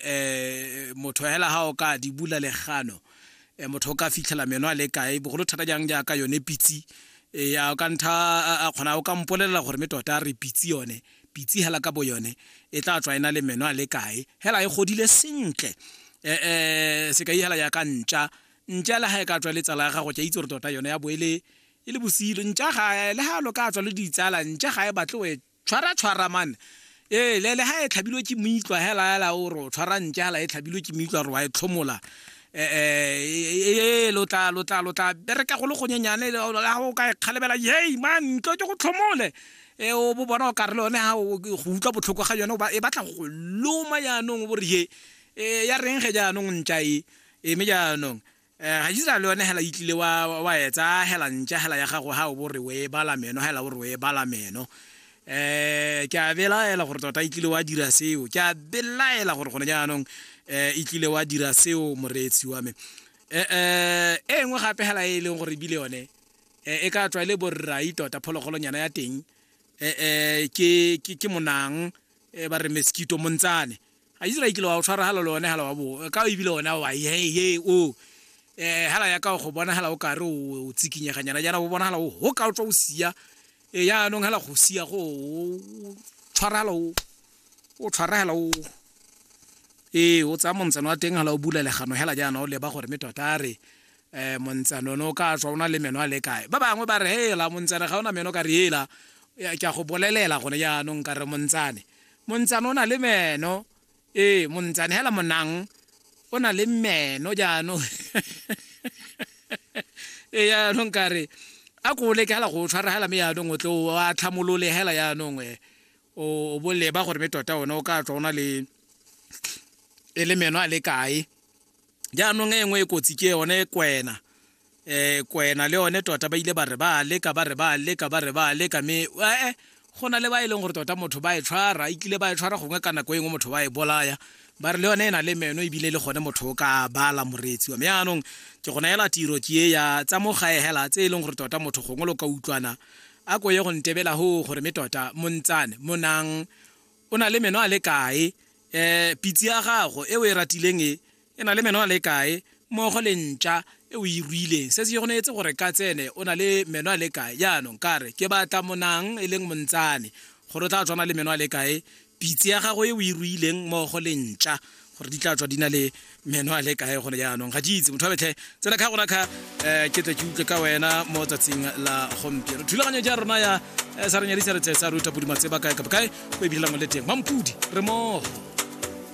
eh, motho hela ga o ka di bula legano eh, motho o ka fitlhela meno a le kae bogolo thata jang jaaka yone pitsi eh, ya o ka ntha a kgona o ka mpolelela gore me tota re pitsi yone pitsi hela ka bo yone e tla tswa ena le meno a le kae hela e godile sentle eh, eh, se ka ihela ya ka ntša ntša le ga e ka tswa le tsala ya gago ke itse gore tota yone ya bo e le e le bosilo ntša ga le ga lo ka tswa le ditsala ntša ga e batle Tshwara tshwara man. Ee, le le ha e tlhabilwe ke moitlwa hela hela o ro tshwara ntse hela e tlhabilwe ke moitlwa ro wa e tlhomola. Eh eh lo tla lo tla lo tla bereka go le go nyenyane ha o ka e kgalebela yey man ntlo ke go tlhomole. E o bo bona o ka re le yone ha o go utlwa botlhoko ga yone e batla go loma jaanong o bo re ye. Eh ya reng ge jaanong ntša e eme jaanong. Eh, ga Isiraele yone hela itlile wa, wa etsa hela ntša hela ya gago ha o bo re o e bala meno hela o re o e bala meno eh ke a belaela gore tota e tlile wa dira seo ke a belaela gore gone jaanong eh e tlile wa dira seo moreetsi wa me eh eh e nngwe gape hela e leng gore bile yone eh, e ka tswa e le borrai tota phologolonyana ya teng eh eh ke ke ke monang eh, ba re mosquito montsane a Israel kile wa o tshwaragala le one hala wa bo ka o ebile one wa ye ye o eh hala ya ka go bonagala o kare o tsikinyeganyana jana o bonagala o ho ka o tswa o sia e eh, ya anong hala go sia go tshwaragala o o tshwaragala o ee o tsaya montshano wa teng hala o bula legano hela jaana o leba gore me tota re um montsanone o ka tswa o na le meno a le kae ba bangwe ba re hela montsane ga o na meno ka re hela ke a go bolelela gone jaanong ka re montsane montsane o na le meno ee montsane hela monang o na le meno jaanong ee jaanong kare a ko leke hela go tshwara hela me jaanong o tle o a tlhamolole hela jaanong e o boleba gore me tota one o ka tswa o na le e le meno a le kae jaanong e nngwe e kotsi ke yone kwena um kwena le yone tota ba ile ba re ba leka ba re ba leka ba re ba leka mme ee go na le ba e leng gore tota motho ba e tshwara e kile ba e tshwara gongwe ka nako e nngwe motho ba e bolaya ba re le yone e na le meno ebile le gone motho o ka bala moreetsi wa me yaanong ke go neela tiro ke e ya tsa mo gae hela tse e leng gore tota motho gongwe lo ka utlwana a ko ye go ntebela ho gore me tota montsane monang O na le meno a le kae? E, pitse ya gago e o e ratileng e, e na le meno a le kae? Mmogo le ntša e o e ruileng. Se se go neetse gore ka tsene o na le meno a le kae? Jaanong, ka re, ke batla monang, e leng montsane, gore o tla tswana le meno a le kae? Pitse ya gago e o e ruileng, mmogo le ntša. gore di tla tswa di na le meno a le kae gone jaanong ga ke itse motho a betlhe tsena kha gona kha um ke tle ke utlwe ka wena mo tsatsing la gompieno thulaganyo ja rona ya eh, sa re nyadisa re tle sa ruta podi matseba kae kapa kae go e bilelang le teng mampodi re mogo